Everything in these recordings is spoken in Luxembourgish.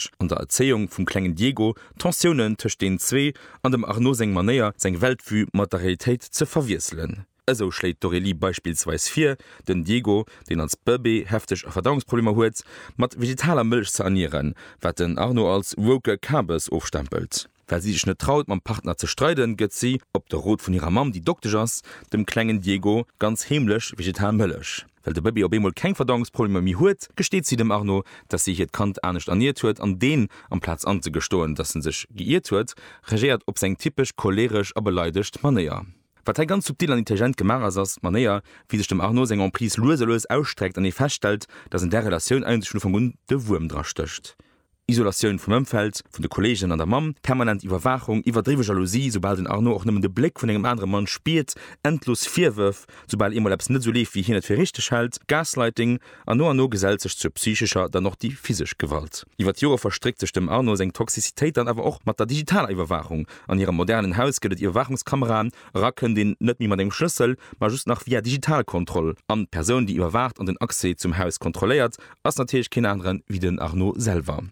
Message an der Erzéiung vum klengen Diego, d'Tensiounen tëscht deenen zwee an dem Arnaud seng Manéier, seng Weltvue mat der Realitéit ze verwiesselen. Esou schléit d'Aurélie beispillsweis vir, den Diego, deen als Bëbee hefteg Verdauungsproblemer huet, mat vegetaler Mëllech ze ernieren, wat den Arnaud als woke Kabes ofstempelt. Well si sech net traut, mam Partner ze streiden, gëtt si, op de Rot vun hirer Mamm, déi Doktesch ass, dem klengen Diego ganz heemlech vegetal Mëllech. Well de Bëbee op eemol keng Verdauungsproblemer méi huet, gesteet si dem Arno, dass si hiert Kand anescht erniert huet an deen, amplaz anzegestoen, dass en sech geiirt huet, reagéiert op seng typesch choleeresch a beleidegt Manéier. Wat hei ganz subtil an intelligent gemaach ass, ass d'Manéier, wéi sech dem Arno seng Emprise lues a lues ausstreckt an ee feststellt, dass an där Relatioun eigentlech vun Ufank un de Wuerm dra stécht. Isolatioun vum Ëmfeld, vun de Kolleegen an der Mamm, permanent Iwwerwaachung, iwwerdriwwe Jalousie, soubal den Arnaud och nëmmen de Bléck vun engem anere Mann spiert, endlos Virwërf, soubal eemol eppes net esou leeft, wéi hien et fir richteg hält, Gaslighting, an no an no gesellt sech zur psychescher, dann och déi physesch Gewalt. Iwwer d'Jore verstréckt sech dem Arnaud seng Toxicitéit dann awer och mat der digitaler Iwwerwaachung. An hirem modernen Haus gëtt et Iwwerwaachungskameraen, era kënnt een net méi mat engem Schlëssel, ma just nach via Digitalkontroll an. D'Persoun, déi iwwerwaacht an den Accès zum Haus kontrolléiert, ass natierlech keen aneren wéi den Arnaud selwer.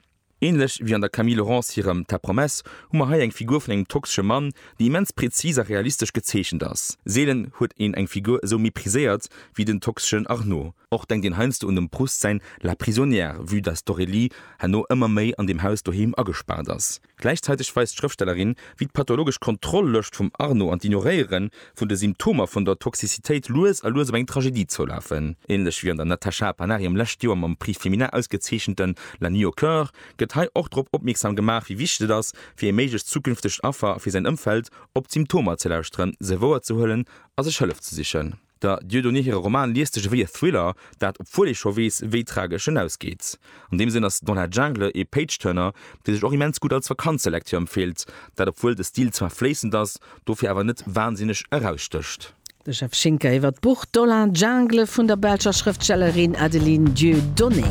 Ähnlech wéi an der Camille Laurence hirem Ta promesse hu mer hei eng Figur vun engem toxesche Mann, déi immens präzis a realistesch gezeechent ass. Seelen huet een eng Figur esou mépriséiert wéi den toxeschen Arnaud. Och denkt een heiansdo un dem Proust säin La prisonnière, vue dass d'Aurélie herno ëmmer méi an deem Haus doheem agespaart ass. Gläichzäiteg weist d'Schrëftstellerin, wéi d'pathologesch Kontroll-Lëscht vum Arno an d'Ignoréiere vun de Symptomer vun der Toxicitéit lues a lues op eng Tragedie zoulafen. Ähnlech wéi an der Natasha Panariem lescht Joer mam Prix Femina ausgezeechente La nuit au cœur gëtt hei och drop opmierksam gemaach, wéi wichteg et ass, fir ee méiglecht zukünftegt Affer a fir säin Ëmfeld, op d'Symptomer ze lauschteren, se wouerzehuelen a sech Hëllef ze sichen. Der Dieudonné hire Roman liest sech ewéi e Thriller, dat obwuel ee scho weess, wéi tragesch en ausgeet. An deem Sënn ass Dans la Jungle ee Page-Turner, dee sech och immens gutt als Vakanzelektür empfeelt, dat obwuel de Stil zwar fléissend ass, dofir awer net wansinneg erausstécht. De Jeff Schinker iwwer d'Buch Dans la Jungle vun der belscher Schrëftstellerin Adeline Dieudonné.